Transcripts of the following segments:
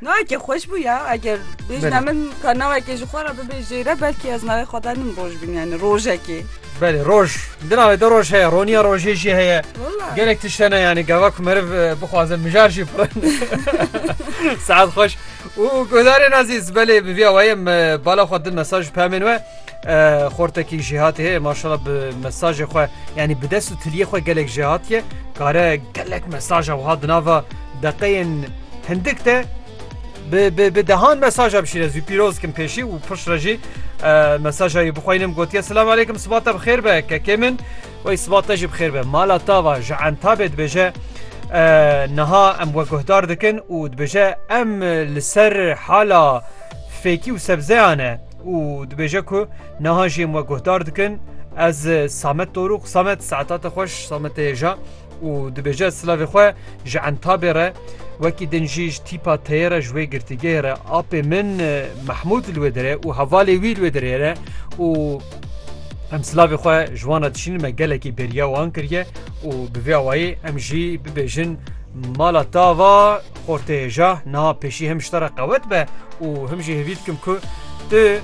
Navekê xweş bû ya eger bêjina min ka navekê ji xwe re bibê jêre belkî ez navê xwe danim roj bin yani rojekê. Belê roj di navê de roj heye roniya rojê jî heye gelek tiştene yani gava ku meriv e, bixwaze mijar jî pirin saet xweş û guhdarên azîz belê bi vîya wayê me bala xwe din mesaj pemên we Xortekî jêhatî heye maşala bi mesajê xwe yanî bi dest û tiliyê xwe gelek jêhatiye kare gelek mesaja wiha di nava deqeyên hindik de bi dehan mesaja bişîre zû pîroz kim pêşî û pişt re jî mesaja wî bixwînim gotiye silam aleykum sibata bi xêr be kekê min wey sibata jî bi xêr be mala tava ji entabê dibêje niha em we guhdar dikin û dibêje em li ser hala fêkî û sebzeyan e û dibêje ku niha jî em we guhdar dikin ez Samet Dorûq Samet saeta te xweş Samet hêja û dibêje silavê xwe ji entabê re wekî din jî ji tîpa teyê re ji wê girtîgehê re apê min Mehmûd li wê dire û hevalê wî li wê dirê re û Em silavê xwe ji wan re dişînin me gelekî bêriya wan kiriye û bi vê awayî em jî bibêjin mala tava Ortayê ja na pêşî him ji te re qewet be û him jî hêvî dikim ku tu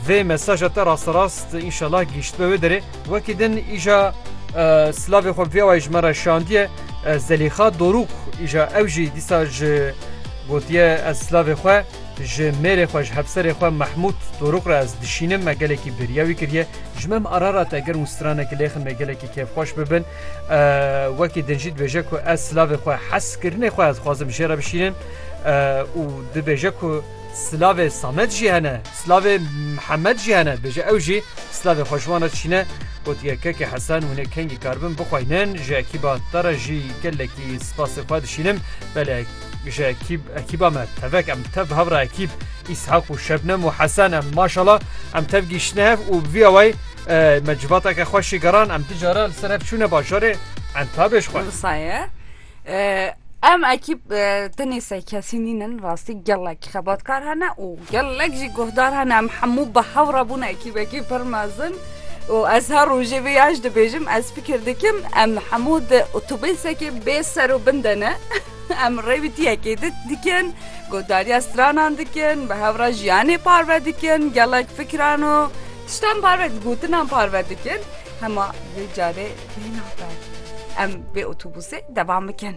vê mesaja te rasterast înşallah gihîştbe wê derê wekî din îja silavê xwe vêwayê ji me re şandiye Zelîxa Dorûk îja ew jî dîsa ji gotiye ez silavê xwe ji mêrê xwe ji hevserê xwe Mehmûd Dorûk re ez dişînim me gelekî bêriya wî kiriye ji me em arara te gerim û stranek lêxin me gelekî kêfxweş bibin Wekî din jî dibêje ku ez silavê xwe hez kirinê xwe ez dixwazim jê re bişînim û dibêje ku silavê Samed jî hene silavê Mihemed jî hene dibêje ew jî silavê xwe ji wan re dişîne gotiye kekê Hesen hûnê kengî karibin bixweynin ji ekîba te re jî gelekî spasê xwe dişînim belê ji ekîb ekîba me tevek em tev bi hev re ekîb îshaq û şebnem û Hesen em maşala em tev gîştine hev û vîya wey Me civateke xweş jî geran em du cara li ser hev çûne bajarê entabê ji xwe. Saye. Em ekîb tenê se kesî nînin rastî gelek xebatkar hene û gelek jî guhdar hene em hemû bi hev re bûn ekîbekî pir mezin. û ez her rojê vê yaş dibêjim ez fikir dikim em hemû di otobêsekê bê ser û bin de ne em rêwîtiyekê di dikin gotdariya stranan dikin bi hevra jiyanê parve dikin gelek fikran û Tiştan parve dikin, gotinan parve dikin hema vê carê tê nabe. Em vê otobusê devam bikin.